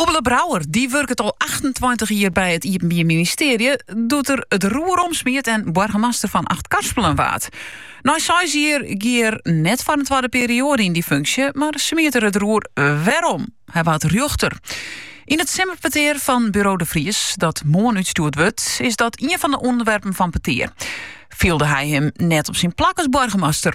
Oebele Brouwer die wurket al 28 jier by it Iepenbier Ministearje, doe't er it roer omsmiet en boargemaster fan Achtkarspelen waard. Nei seis jier gie er net foar in twadde perioade yn dy funksje, mar smiet er it roer wer om. Hy waard rjochter. Yn it simmerpetear fan Buro de Fries, dat moarn útstjoerd wurdt, is dat ien fan de ûnderwerpen fan petear. Fielde hy him net op syn plak as boargemaster?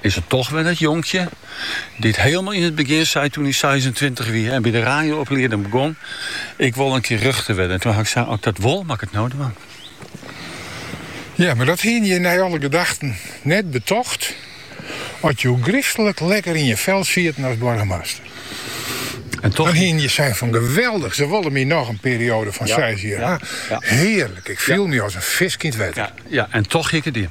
Is it toch wol dat jonkje dy't heelmel yn it begjin sei toen hy seisentweintich wie en by de raio-oplieding begûn, Ik wol in kear rjochter wurden. En toen ha ik sein, As ik dat wol, moat ik it no dwaan. Ja, mar dat hiene je nei alle gedachten net betocht as je hiel gryslik lekker yn je vel sieten as boargemaster. En toch. Dan hiene je sein fan, Geweldig, ze wolle my noch in periode fan seis jier ha. Hearlik, ik fiel my as in fisk yn it wetter. Ja, en toch hie ik it dien.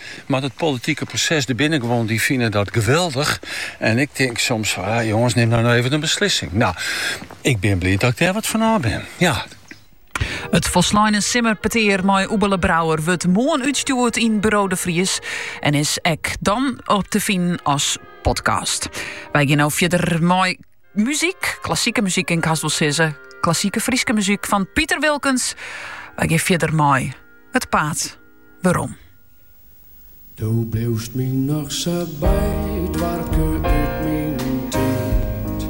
Mar dat politike proses der binne gewoan dy fine dat geweldich en ik tink soms fan ah jonges nim no even in beslissing. No, ik bin bliid dat ik dêr wat fan ôf bin. Ja. It folsleine simmerpetear mei Oebele Brouwer wurdt moarn útstjoerd yn Buro de Fries en is ek dan te finen as podcast. Wy gean no fierder mei muzyk, klassike muzyk en kinst wol sizze klassike Fryske muzyk fan Piter Wilkens. Wy gean fierder mei It Paad. werom. Do bliuwst my noch sa by, doarpke út myn tiid.